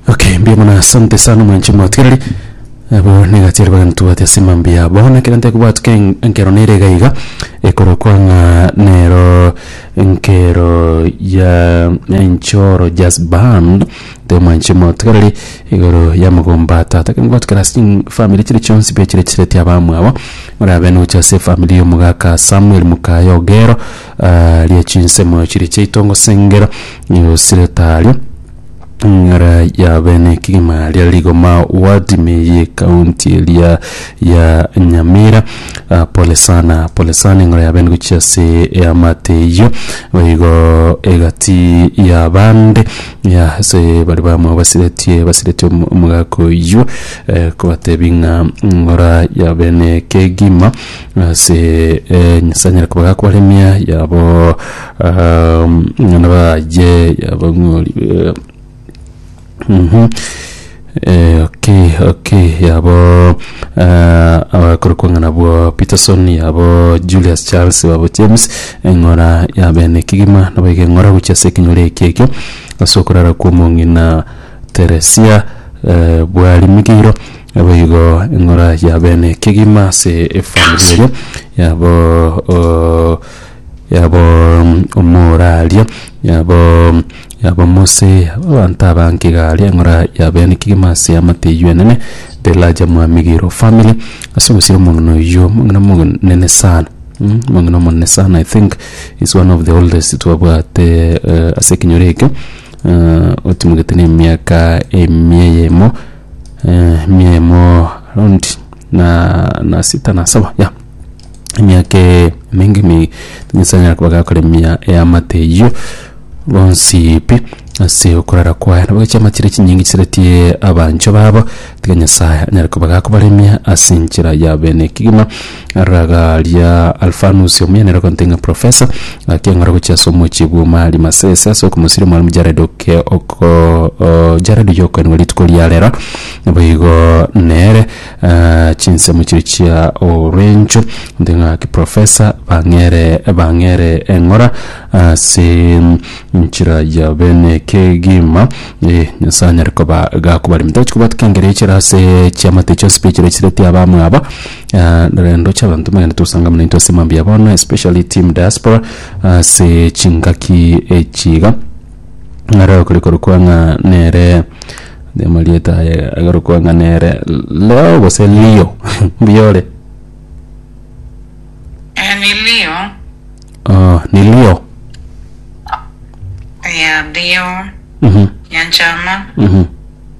Okay, mbuya mono asante sana mwanchi mwatigereri abo negatieri bagani tubwate ase emambi ya bono kero nte kobwatuka en- enkero nere iga iga ekorokwa ng'a nero enkero ya enchoro jazz band nte mwanchi mwatigereri igoro ya mogomba ya tata ekero nabwate kera ase chifamiri chire chionsi pi chire chireti abamwabo orabe nogocha ase efamiri ya omogaka Samuel Mukaya Ogero. Aria chinsemo chiria chia itongo sengera nigo siretaria ng'ara ya bene ekegima ria rigoma ward me ye county eria ya nyamira Ah, pole sana pole sana eng'ara ya bene gochia ase eamate eyio boigo egati ya bande ya ase bari bamwe basiretie basiretie omo- omogaka oyio eh, kobatebi ng'a ng'ora ya bene ekegima Ase eh, Nyasaye anyare koba gakobaremia yabo um, ng'ana baye yabo ng'ori eh, Mhm. Eh, okay okay yabo eh, abakorokwa ng'a nabwo peterson yabo julius charles yabo james eng'ora ya bene kigima nabo egeng'ora gochia ase ekenyoro eke ekio ase okorara kw'omong'ina Teresia, bwarimigeirwe boigo eng'ora ya bene kegima ase efamiri eria yabo yabo omoraria yabo yabo Mose yabo abanto abange iga aria eng'ora ya bene kegima ase eamate eyio enene the larger mwamigeirwe family ase ogosira omong'ina oyio omong'ina omonene sana omong'ina omonene sana I think is one of the oldest twabwate ase ekenyoro ekio. eh, otimogete n'emiaka emia eyemo eh, emia eyemo around na na sita na saba ya emiaka emenge mi nyasaye anyara koba gakora emia eyamate eyio bonsi pi ase okorara kwaye nabo chiama chiria chinyinge chiseretie abancho babo tiga nyasaye anyare koba gakobaremia ase enchera ya bene kegima Ragaria Alfanus omuyanera okonte ng'a Profesa, gaki eng'ora gochia ase omochie bw'uma Alimasese ase okomosiria Omwalimu Jared oke oko o Jared oyio okoenigwa rituko ria rero boigo nere ah, chinsemo chiria chia orwencho nte ng'a ki Profesa bang'ere bang'ere eng'ora ase nchera ya bene kegima eh, Nyasae anyare koba gakobaremete. Nachi kobwatwa kengere echera ase chiamate chionsi pi echira chisireti abamwabo Ah, eh, ndoche abanto mbagende togosanga buna intwe ase mambia bono especially team diaspora ase chingaki echiga ng'ara okore korokwa ng'a nere amarieta aye agarokwa ng'a nere leo gose lio mbiore Emilio, oh, ni lio ya Leo, Mhm, Nyanchama, mhm.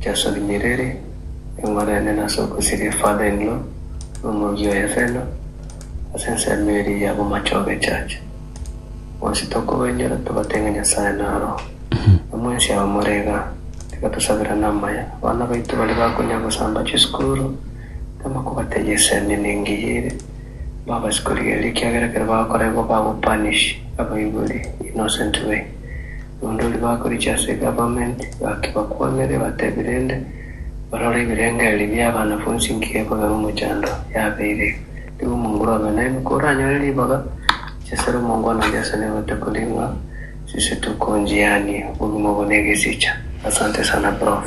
Yeso rinyereri, engoro yane nase ogosiria father in law na omorusia oye feno ase ensemo eria ya bomachogo echache. Bonsi tokobainyoora tobate ng'a Nyasae naroho. Namwensi aba more igaa, tiga tosabera namaya abana baito baria bakonya gosamba chisukuru, tama kobatebia esemi nengeye ere, mbabasi korigereria ekiagera ekero bagokora igo bago punish abaibori innocent way. Abandori bakorigia ase eGovernment gaki bakwanere batebi rende barore ebirengererio biabanafunsi nkiya ekobe omochando yabeire. Nigo omonguru obe naino koranyore ribaga chiasare omongwana oria ase nebete koria ng'a sisi tokonjiania obogima obo negesicha. Asante sana prof.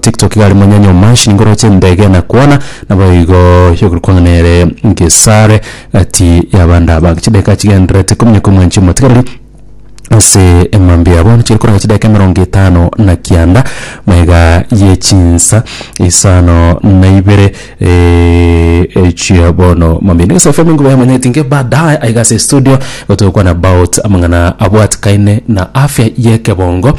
Tiktok iga aria monyanya omanshi nigo oroche endege enakwana naboigo yogorwa kwang'ana ere Gesare gati y'abande aba. Chidakika chigendererete ikomi na ikomo enche omotigareri ase emambia yabo bono chiri koranga chidakika emerongo etano na kianda maiga ye chinsa isano na ibere echia bono mambia. Nigo SFM enkuba yamanyete inke baadaye aiga ase estudio gotogokwani about amang'ana abwatikaine na afya y'ekebongo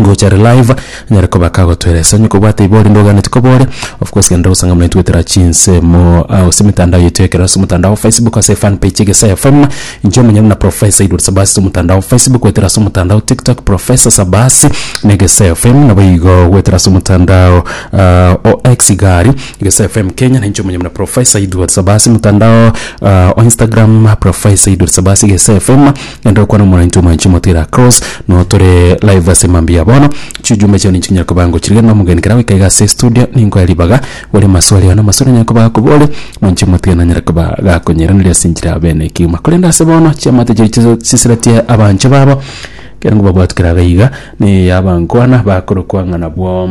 ngocha are live anyare koba kagotwera ase onye kobwate ibe ore ndoganetie koba ore of course genda gosanga buna intwe goetera chinsemo ah, ase emetandao yetu ekero ase omotandao wa facebook ase fan page egesae fm inche omonye buna professor edward sabasi ase omotandao wa facebook goetera ase omotandao tiktok professor sabasi na egesae fm nabo igo goetera ase omotandao ah, o x iga aria egesae fm kenya na inche omonye buna professor edward sabasi motandao ah, o instagram professor edward sabasi egesae fm Genda okwane omorainto omwanchi omotire across no tore live ase mambia bono chijumbe chao ninchinyara koba ngochirire na omogeni kera goika iga ase studio ninkoe ribaga bore maswali one amasore anyare koba akobore mwanchi omotire nanyare koba gakonyeiraneria ase enchera ya obene ekegima korende ase bono chiamate chiria chiso chisiratie abanche babo ekero ngobabwati kera gaiga ne yabankwana bakorokwa ng'a nabwo